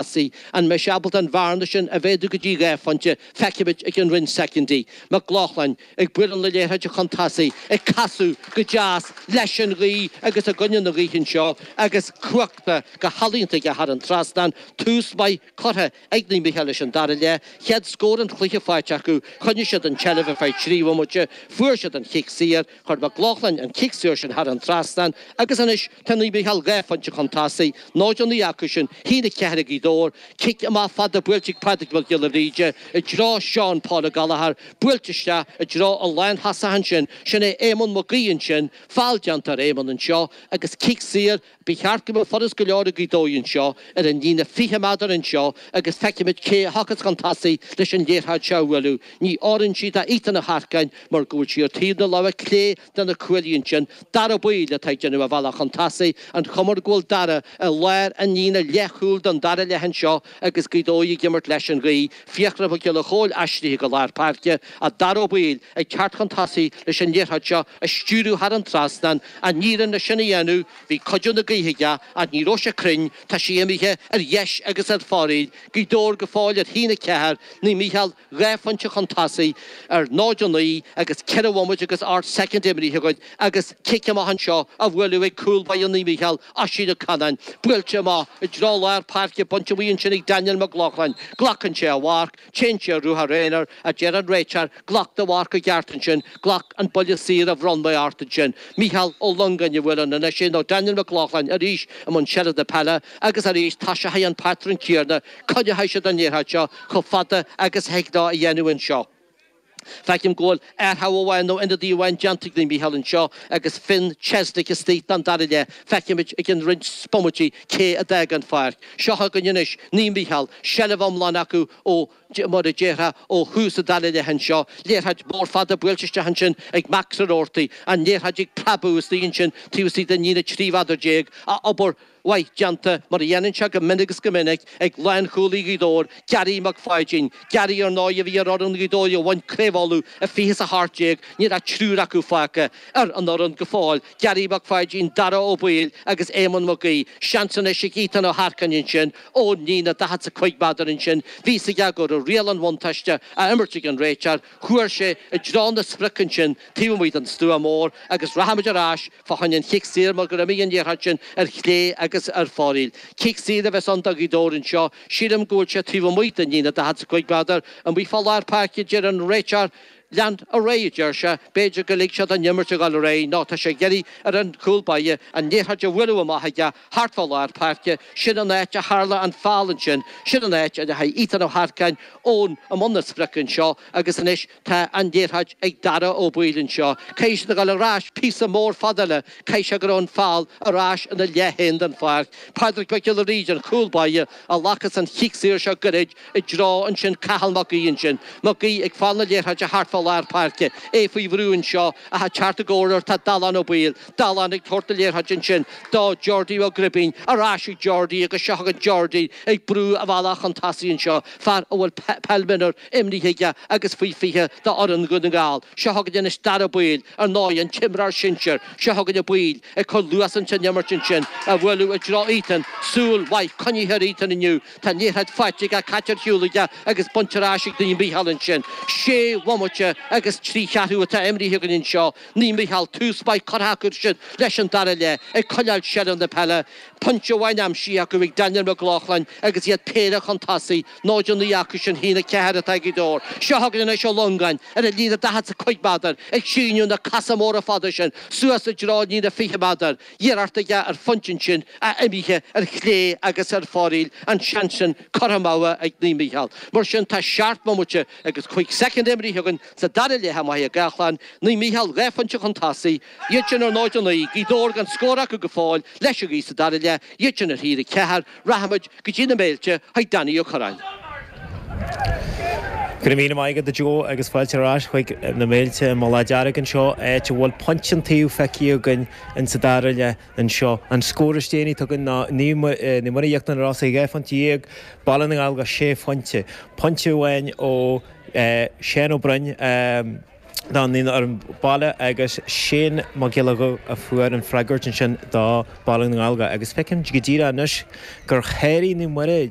thosaigh. An mbeidh sé ábalta an bhearna sin a mhéadú go dtí dhá phointe? Feicfimid i gceann roinnt soicindí. Mac Lochlainn ag bualadh na liathróide chun tosaigh, ag casadh go deas leis an ghaoth agus i gcoinne na gaoithe anseo agus crochta go healaíonta aige thar an trasnán. Tús maith curtha ag Naomh Mícheál leis an dara leath. Chéad scór an chluiche faighte acu. Choinnigh siad an tseilbh ar feadh trí bhomaite. Fuair siad an chic saor. Chuir Mac Lochlainn an cic saor sin thar an trasnán agus anois tá Naomh Mícheál dhá phointe chun tosaigh, 0-9 acusan, 1-4 Gaoth Dobhair cic amach fada buailte ag Pádraig Mac Giolla Bhríde i dtreo Seán Paul O'Gallagher, buailte isteach i dtreo an lántosaí ansin, sin é Éamonn Mac Aoidh ansin, feall déanta ar Éamonn anseo agus cic saor Ba cheart go mbeadh furast go leor ag Gaoth Dobhair anseo ar an líne 20 méadar anseo agus feicimid cé a thiocfas chun tosaigh leis an liathróid seo a bhualadh. Ní oireann sí do Ethan Ó hEarcáin mar go bhfuil sí ar taobh na láimhe clé de na cuaillí ansin. Dara Ó Baoill atá ag déanamh a bhealach chun tosaigh. An chuma air go bhfuil Dara i lár an líne leathchúil don dara leath anseo agus Gaoth Dobhair ag imirt leis an ghaoth. Fiachra Mac Giolla Chóill aistrithe go lár páirce, Dara Ó Baoill ag teacht chun tosaigh leis an liathróid seo a stiúradh thar an trasnán, an éiríonn leis sin a dhéanamh, bhí cuidiú na gaoithe aige ach ní raibh sé cruinn, tá sí imithe ar dheis agus ar fóraoil, Gaoth Dobhair go fóill ar 1-4, Naomh Mícheál dhá phointe chun tosaigh ar 0-9 agus ceithre bhomaite agus ocht soicind imrithe acu. agus cic amach anseo á bhualadh ag cúl báire Naomh Mícheál Oisín Ó Canáin, buailte amach i dtreo lár páirce, bainte amuigh ansin ag Daniel Mac Lochlainn, glacann sé a mharc, téann sé ar ruathar aonair, a deir an réiteoir, glac do mharc i gceart ansin, glac an buille saor a bhronn mé ort ansin. Mícheál Ó Longáin a bhuaileann ar ais é nó Daniel Mac Lochlainn arís i mbun seilbhe na peile agus arís toiseochaidh an patrún céanna, coinneoidh siad an liathróid seo chomh fada agus a thig leo a dhéanamh anseo. Feicim go bhfuil athrú amháin nó ionadaí amháin déanta ag Naomh Mícheál anseo agus Finn Chesney istigh don dara leath. Feicfimid i gceann roinnt bomaití cé a d'fhág an pháirc. Seo chugainn anois Naomh Mícheál, seilbh iomlán acu ó, mar a déarfá, ó thús an dara leath anseo. Liathróid mhór fada buailte isteach ansin ag Max Ó Rabhartaigh. An liathróid ag preabadh istigh ansin taobh istigh den líne 13 mhéadar. Ach obair mhaith déanta, mar a dhéanann sé go minic is go minic, ag lánchúlaí Ghaoth Dobhair, Gary Mac Pháidín. Gary, ar ndóigh, a bhí ar fhoireann Ghaoth Dobhair a bhain Craobh Uladh i 20 is 18, níl ach triúr acu fágtha ar an fhoireann go fóill, Gary Mac Pháidín, Dara Ó Baoill agus Éamonn Mac Aoidh. Seans anois ag Ethan Ó hEarcáin ansin ón líne, 40 is 5 méadar ansin, bhí a fhios aige go raibh riail an bhuntáiste á imirt ag an réiteoir, Chuir sé i dtreo na sprice ansin taobh amuigh den stua mór agus rachaimid ar ais fá choinne an chic saor mar go raibh an liathróid sin ar chlé agus ar fóraoil. Cic saor a bheas ann do Ghaoth Dobhair anseo. Sílim go bhfuil sé taobh amuigh den líne 45 méadar amuigh fá lár páirce a deir an réiteoir. Lean ar aghaidh a deir sé. B'fhéidir go lig sé don imirt a ghoil ar aghaidh nó tá sé ag iarraidh ar an chúl báire an liathróid a bhualadh amach aige. Thart fá lár páirce, sin an áit a tharla an feall ansin, sin an áit a ndeachaigh Ethan Ó hEarcáin, Eoin i mbun na sprioc anseo agus anois tá an liathróid ag Dara Ó Baoill anseo, caithfidh siad a ghabháil ar ais píosa mór fada eile, caithfidh sé go raibh an feall ar ais ina leath fhéin den pháirc. Pádraig Mac Giolla Bhríde, an cúl báire, a ghlacas an chic saor seo gairid i dtreo ansin Cathal Mac Aoidh ansin, Mac Aoidh ag fáil na liathróide thart fá lár páirce, é faoi bhrú anseo ach ag teacht i gcabhair air tá Dallán Ó Baoill, Dallán ag tabhairt an liathróid ansin do Jordi Ó Gribín. Ar ais ag Jordi agus seo chugainn Jordi ag brú a bhealach chun tosaigh anseo, fear a bhfuil peil mionúr imrithe aige agus faoi 20 do fhoireann Dhún na nGall. Seo chugainn anois Dara Ó Baoill, ar ndóigh, an t-imreoir sinsir. Seo chugainn Ó Baoill ag cur luas ins an imirt ansin, á bualadh i dtreo Ethan. Súil mhaith coinnithe ar Ethan inniu. Tá an liathróid faighte aige, caite ar shiúl aige agus bainte ar ais ag Naomh Mícheál ansin. Sé bhomaite agus trí cheathrú atá imrithe againn anseo. Naomh Mícheál tús maith curtha acu ansin leis an dara leath ag coinneáil seilbh na peile, pointe amháin aimsithe acu ag Daniel Mac Lochlainn agus iad péire chun tosaigh, 0-9 acu sin a haon a ceathair atá ag Gaoth Dobhair. Seo chugainn anois Ó Longáin ar an líne daichead 's a cúig méadar ag síneadh na cosa móra fada sin suas i dtreo líne fiche méadar, iarracht aige ar phointe ansin ach imithe ar chlé agus ar foraíl an seans sin curtha amú ag Naomh Mícheál. Mar sin tá seacht mbomaite agus cúig soicind imrithe againn, Sa dara leath i Machaire Gathlán, Naomh Mícheál dhá phointe chun tosaigh, iad sin ar 0-9, Gaoth Dobhair gan scór acu go fóill, leis an ghaoth sa dara leath, iad sin ar 1-4, rachaimid go dtí na Méilte chuig Danny Ó Corráin. Go raibh míle maith agat a Joe agus fáilte ar ais chuig na Méilte i Mullach Dearg anseo, áit a bhfuil pointe an taobh feicthe againn ins sa dara leath anseo. An scór is déanaí atá againn ná Naomh Muire Íochtar na Rosann dhá phointe dhéag, Baile na nGallóglach sé phointe, pointe amháin ó Seán Ó Broin do fhoireann an bhaile agus Seán Mac Giolla Dhuibh a fuair an freagairt ansin do Bhaile na nGallóglach agus feicim go díreach anois gur sháraigh Naomh Muire